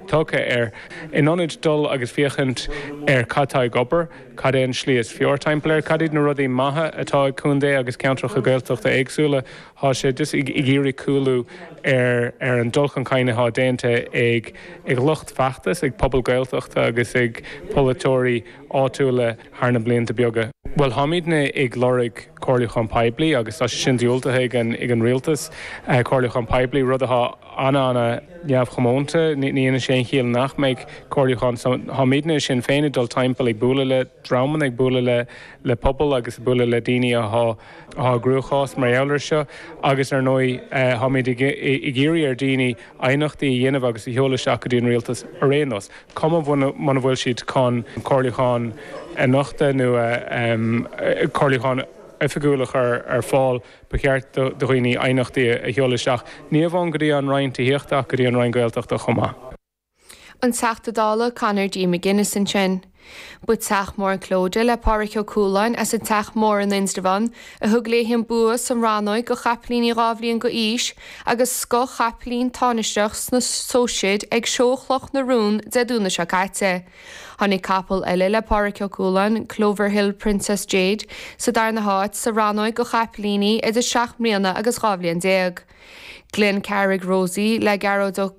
tugtha air. In ionad dul agus féachaint ar cad tá ag obair, cad é an slí is fearr timpeall air, cad iad na rudaí maithe atá ag contae agus ceantracha Gaeltachta éagsúla, thá sé just ag iarraidh cúlú ar ar an dul chun cinn athá déanta ag ag lucht feachtas, ag pobal Gaeltachta agus ag polaiteoirí áitiúla. thar na blianta beaga. Bhuel, táimidne ag lorg comhairliúchán poiblí agus tá sé sin diúltaithe ag an rialtas. Comhairliúchán poiblí, rud atá an-ana-neamhchomónta, ní dhéanann sé aon chiall nach mbeadh comhairliúchán. So, táimidne i Sinn Féin ag dul timpeall ag bualadh le dreamanna, ag bualadh le pobail agus ag bualadh le daoine atá i gcruachás mar gheall air seo agus ar ndóigh táimid ag iarraidh ar dhaoine aighneachtaí a dhéanamh agus a sheoladh isteach go dtí an rialtas ar aon nós. cuma muna bhfuil siad chun comhairliúchán a nochtadh nó comhairliúchán oifigiúil a chur ar fáil, ba cheart do dhaoine aighneachtaí a sheoladh isteach, ní amháin go dtí an Roinn Tithíochta ach go dtí an Roinn Gaeltachta chomh maith. An Teachta Dála Conor D. McGuinness ansin. Ba Teach Mór Clodagh le Pádraic Ó Cualáin as an Teach Mór in Indreabhán a thug léi an bua sa rannóig go chaipilíní dhá bhliain go aois agus scothchaipilín tánaisteach sna Sóiseid ag Seó Chloch na Rón Dé Domhnaigh seo caite. Tháinig capall eile le Pádraic Ó Cualáin, Clover Hill Princess Jade, sa darna háit sa rannóig go chaipilíní idir seacht mbliana agus dhá bhliain déag. Glencarrig Rosie le Gearóid Ó.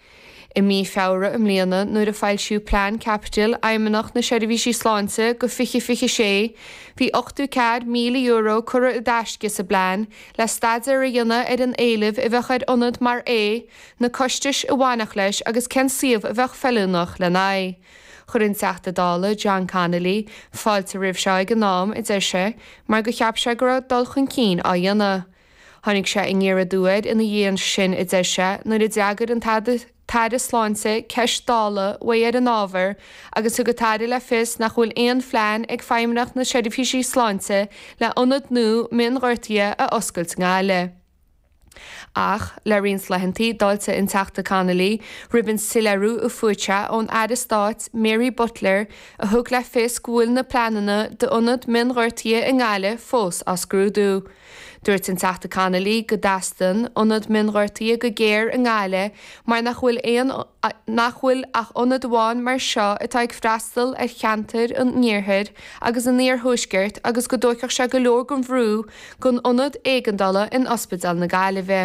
I mí Feabhra i mbliana, nuair a foilsíodh Plean Caipitil Fheidhmeannacht na Seirbhísí Sláinte go 2026, bhí €800,000 curtha i dtaisce sa bplean le staidéar a dhéanamh ar an éileamh a bheadh ar ionad mar é, na costais a bhainfeadh leis agus cén suíomh a bheadh feiliúnach lena aghaidh. Chuir an Teachta Dála, John Connolly, fáilte roimh seo ag an am, a deir sé, mar gur cheap sé go raibh dul chun cinn á dhéanamh. Tháinig sé aniar aduaidh air ina dhiaidh sin, a deir sé, nuair a d'fhreagair an tAire Sláinte ceist Dála uaidh ar an ábhar agus thug an tAire le fios nach bhfuil aon phlean ag Feidhmeannacht na Seirbhísí Sláinte le ionad nua mionghortaithe a oscailt i nGaillimh. Ach le roinnt laethantaí, d'fháiltigh an Teachta Connolly roimh an soiléiriú a fuair sé ón Aire Stáit Mary Butler a thug le fios go bhfuil na pleananna d'ionad mionghortaithe i nGaillimh fós á scrúdú. Dúirt an Teachta Connolly go dteastaíonn ionad mionghortaithe go géar i nGaillimh mar nach bhfuil aon nach bhfuil ach ionad amháin mar seo atá ag freastal ar cheantair an iarthair agus an iarthuaiscirt agus go dtógfadh sé go leor den bhrú den ionad éigeandála in Ospidéal na Gaillimhe.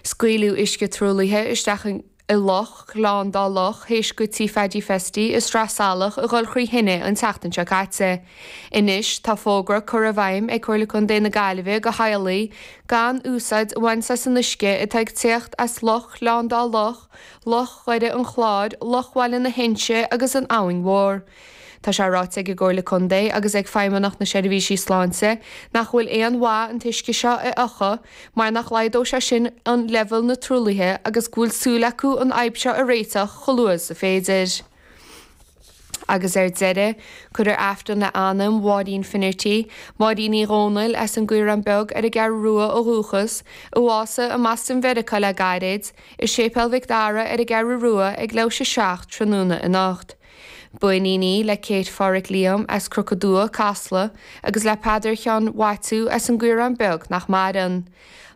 Scaoileadh uisce truaillithe isteach i loch Ghleann Dá Loch théis go Tigh Phaddy Festy i Sraith Salach a dhul trí thine an tseachtain seo caite. Anois tá fógra curtha i bhfeidhm ag Comhairle Contae na Gaillimhe go theaghlaigh gan úsáid a bhaint as an uisce atá ag tíocht as Loch Ghleann Dá Loch, Loch Dhoire an Chláir, Loch Bhaile na hInse agus an Abhainn Mhór. Tá sé ráite ag an gComhairle Contae agus ag Feidhmeannacht na Seirbhísí Sláinte nach bhfuil aon mhaith an t-uisce seo a fhiuchadh mar nach laghdódh sé sin an leibhéal na truaillithe agus go bhfuil súil acu an fhadhb seo a réiteach chomh luath is a féidir. Agus ar deireadh, cuirfear Aifreann le anam Mháirín Finnerty, Máirín Ní Dhomhnaill as an gCaorán Beag ar an gCeathrú Rua ó dhúchas, a bhásaigh i mBoston Mheiriceá le gairid, i Séipéal Mhic Dara ar an gCeathrú Rua ag leathuair théis a 7 tráthnóna anocht. B'iníon í le Kate Phádhraic Liam as Cnoc Aduaidh, Casla, agus le Peadar Sheáin Mhaitiú as an gCaorán Beag, nach maireann.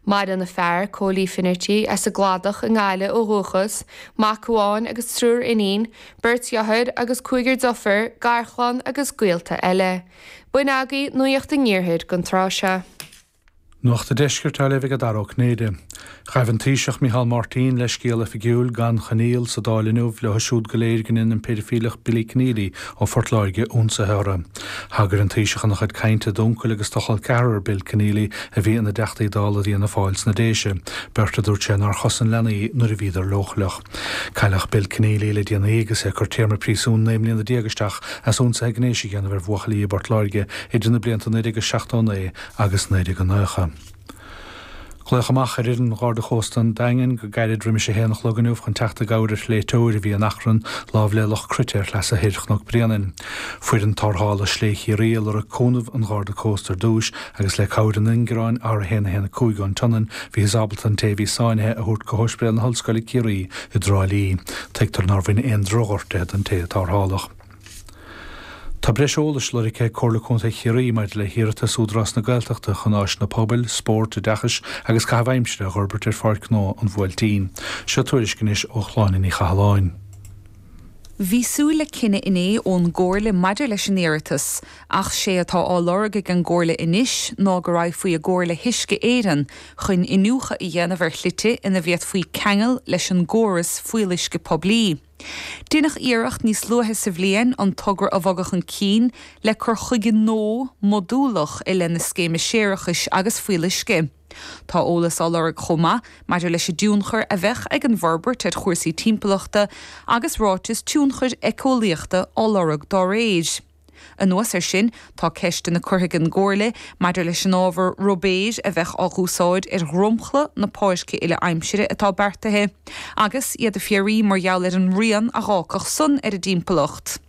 Maireann a fear, Cóilí Finnerty, as an gCladach i nGaillimh ó dhúchas, mac amháin agus triúr iníon, beirt dheartháir agus cúigear deirfiúr, garchlann agus gaolta eile. B'in agaibh nuaíocht an Iarthair gon tráth seo. Nuacht an Deiscirt á léamh ag Dara Ó Cinnéide. Ghaibh an Taoiseach Micheál Martin leithscéal oifigiúil, gan choinníoll, sa Dáil inniu leo siúd go léir go ndein an péidifíleach Billy Kenneally ó Phort Láirge ionsaithe orthu. Thagair an Taoiseach ina chuid cainte d'uncail agus do chol ceathrar Bill Kenneally a bhí ina dTeachtaí Dála d'Fhianna Fáil sna Déise, beirt a dúirt sé nár chosain leanaí nuair a bhíodar leochaileach. Cailleadh Bill Kenneally le déanaí agus é ag cur téarma príosúin naoi mbliana déag isteach as ionsaithe gnéis a dhéanamh ar bhuachaillí i bPort Láirge idir na blianta 1979 agus 1990. Glaodh amach ar fhoireann Gharda Cósta an Daingin go gairid roimis a haon a chlog inniu chun teacht i gcabhair ar shléibhteoir a bhí in achrann lámh le Loch Cruite ar shleasa thoir Chnoc Bréanainn. Foireann Tarrthála Sléibhe Chiarraí a lorg cúnamh an Gharda Cósta ar dtúis agus le cabhair an ingearáin R115 ón tSionainn bhíothas ábalta an té a bhí sáinnithe a thabhairt go hOspidéal na hOllscoile Ciarraí i dTrá Lí. Tuigtear nár bhain aon drochghortuithe don té a tarrtháladh. Tá breis eolais lorgtha ag Comhairle Contae Chiarraí maidir le hiarratas Údarás na Gaeltachta chun áiseanna pobail, spóirt, oideachais agus caitheamh aimsire a dh'fhorbairt ar Pháirc Ghnó an Bhuailtín. Seo tuairisc anois ó Shláine Ní Chathalláin. Bhí súil le cinneadh inné ón gComhairle maidir leis an iarratas, ach sé atá á lorg ag an gComhairle anois ná go raghfaí i gcomhar le hUisce Éireann chun iniúchadh a dhéanamh ar shlite ina bhféadfaí ceangal leis an gcóras fuíolluisce poiblí. Deineadh iarracht níos luaithe sa bhliain an togra a bhogadh chun cinn le cur chuige nua modúlach i leith na scéime séarachais agus fuíolluisce. Tá eolas á lorg chomh maith maidir leis an dtionchar a bheadh ag an bhforbairt ar chúrsaí timpeallachta agus ráiteas tionchair éiceolaíochta á lorg dá réir. Anuas air sin, tá ceisteanna curtha ag an gComhairle maidir leis an ábhar ruibéir a bheadh á dh'úsáid ar dhromchla na páirce uile-aimsire atá beartaithe, agus iad ag fiafraí mar gheall ar an rian a dh'fhágfadh san ar an dtimpeallacht.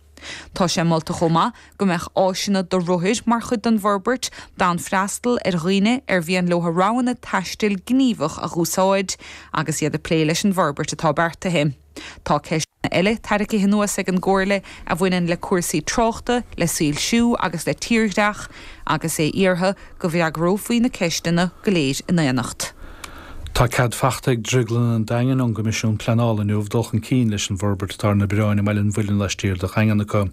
Tá sé molta chomh maith go mbeadh áiseanna do rothair mar chuid den bhforbairt, d'fhonn freastal ar dhaoine ar mhian leo a roghanna taistil gníomhach a dh'úsáid agus iad ag plé leis an bhforbairt atá beartaithe. Tá ceisteanna eile tarraicithe anuas ag an gComhairle a bhaineann le cúrsaí tráchta, le soilsiú agus le tírdhreach, agus é iarrtha go bhfreagrófaí na ceisteanna go léir in aonacht. Tá cead fachta ag Drioglann an Daingin ón gCoimisiún Pleanála inniu dul chun cinn leis an bhforbairt atá ar na bioráin i mBaile an Mhuilinn laistiar de Dhaingean acu.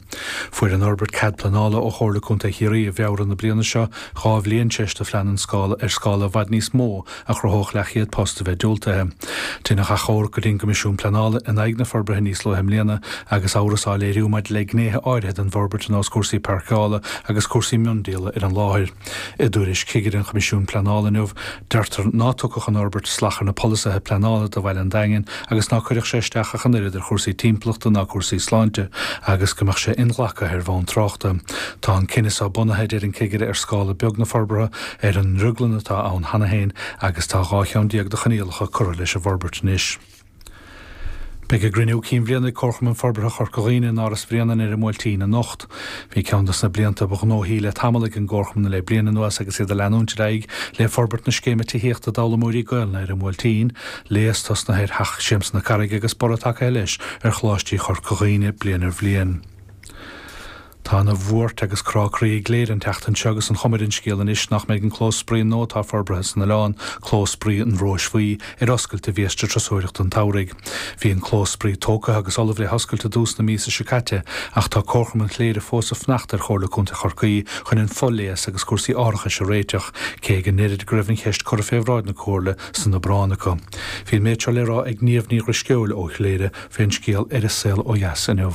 Fuair an fhorbairt cead pleanála ó Chomhairle Contae Chiarraí i bhFeabhra na bliana seo, dhá bhliain tar éis do phlean ar scála ar scála i bhfad níos mó a chruthódh leathchéad post a bheith diúltaithe. Deineadh achomharc go dtí an gCoimisiún Pleanála in aghaidh na forbartha níos luaithe i mbliana agus amhras á léiriú maidir le gnéithe áirithe den bhforbairt ar nós cúrsaí páirceála agus cúrsaí miondíola ar an láthair. I dtuairisc chigire an Choimisiúin Pleanála inniu, deirtear ná tugfadh an fhorbairt sláthar ar na polasaithe pleanála do Bhaile an Daingin agus ná cuirfeadh sé isteach ach an oiread ar chúrsaí timpeallachta ná cúrsaí sláinte agus go mbeadh sé inghlactha ar bhonn tráchta. Tá an cinneadh seo bunaithe, a deir an cigire, ar scála beag na forbartha, ar an ndrioglann atá ann cheana féin agus tá dhá cheann déag de choinníollacha curtha leis an bhforbairt anois. Beidh a gcruinniú cinn bhliana ag Comharchumann Forbartha Chorca Dhuibhne in Áras Bhréanainn ar an mBuailtín anocht. Bhí ceann dos na blianta ba ghnóthaí le tamall ag an gComharchumann le bliain anuas agus iad ag leanúint ar aghaidh le forbairt na scéime tithíochta d'fhoghlaimoírí Gaolainne ar an mBuailtín, léas tosnaithe ar Theach Siamsa na Carraige agus borradh tagaithe leis ar Choláistí Chorca Dhuibhne bliain ar bhliain. Tá ana bhuairt agus crá croí i gCléire an tseachtain seo agus an chuma ar an scéal anois nach mbeidh an clós spraoi nua atá forbraithe san oileán, Clós Spraoi an Róis Bhuí, ar oscailt do bhiaiste turasóireachta an tsamhraidh. Bhí an clós spraoi tógtha agus ullamh le hoscailt i dtús na míosa seo caite ach tá Comharchumann Chléire fós ag fanacht ar Chomhairle Contae Chorcaí chun an fo-léas agus cúrsaí árachais a réiteach, cé go ndeirid go raibh an cheist curtha fé bhráid na Comhairle san Abrán acu. Bhí an méid seo le rá ag Niamh Ní Dhrisceoil ó Chléire fén scéal ar An Saol Ó Dheas inniu.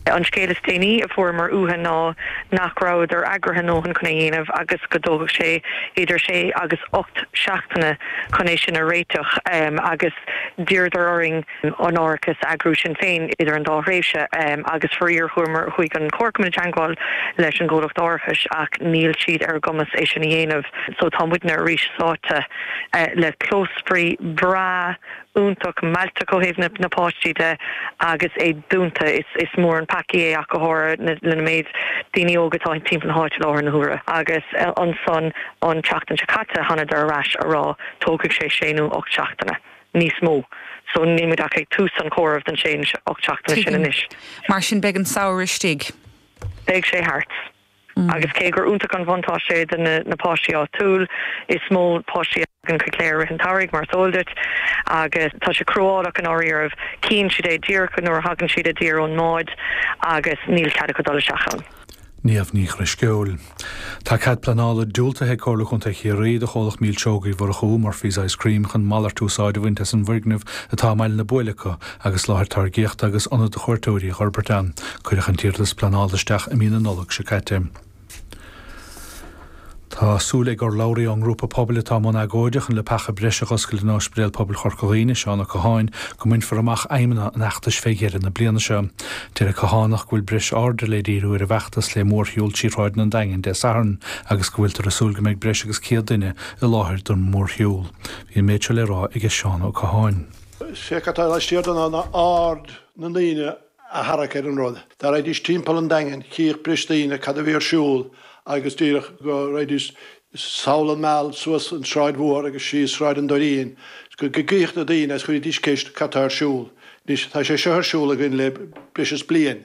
An scéal is déanaí a fuaireamar uathu ná nach rabhadar eagraithe a ndóthain chun é a dhéanamh agus go dtógfadh sé idir sé agus ocht seachtaine chun é sin a réiteach agus d'iarradar orainn an árachas a eagrú sinn féin idir an dá thréimhse agus faraor chuaigh an comharchumann i dteangmháil leis an gcomhlacht árachais ach níl siad ar a gcumas é sin a dhéanamh so tá muidne arís sáite le clós spraoi breá. iontach mealltach ó thaobh na páistí de agus é dúnta. Is mór an peacaí é ach go háirithe le na méid daoine óga atá timpeall na háite i láthair na huaire. Agus ansan an tseachtain seo caite thánadar ar ais a rá tógfaidh sé sé nó ocht seachtaine níos mó. So níl muid ach ag tús an chomhairimh don sé nó ocht seachtaine sin anois. Tuigim. Mar sin beidh an samhradh istigh. Beidh sé thart. Agus cé gur iontach an bhuntáiste é do na páistí áitiúil, is mó páistí a thagann chuig Cléire i rith an tsamhraidh, mar is eol duit, agus tá sé cruálach i ndáiríribh, cíonn siad é díreach nuair a thagann siad i dtír ón mbád agus níl cead acu dul isteach ann. Niamh Ní Dhrisceoil. Tá cead pleanála diúltaithe ag Comhairle Chontae Chiarraí do chomhlacht Milseoga Uí Mhurchú, Murphy's Ice Cream, chun malairt úsáid a bhaint as an bhfoirgneamh atá i mBaile na Buaile acu agus láthair táirgíochta agus ionad do chuairteoirí a dh'fhorbairt ann. Cuireadh an t-iarratas pleanála isteach i mí na Nollag seo caite. Tá súil ag urlabhraí ón ngrúpa pobail atá i mbun agóide chun leapacha breise a dh'oscailt in Ospidéal Pobail Chorca Dhuibhne, Seán Ó Catháin, go mbainfear amach aidhmeanna an fheachtais fé dheireadh na bliana seo. Deir an Cathánach go bhfuil breis airde le díriú ar an bhfeachtas le mórshiúl trí shráideanna an Daingin Dé Sathairn agus go bhfuiltear ag súil go mbeidh breis agus 100 duine i láthair don mhórshiúl. Bhí an méid seo le rá aige Seán Ó Catháin. Sé cad atá laistiar de ná aird na ndaoine a tharrac ar an rud. Dá raghaidís timpeall an Daingin, chífeadh breis daoine cad a bhí ar siúl agus díreach go raghaidís sall an Meal suas an Sráid Mhór agus síos Sráid an Doirín, go gcífeadh na daoine agus chuirfidís ceist cad tá ar siúl. Anois tá sé seo ar siúl againn le breis is bliain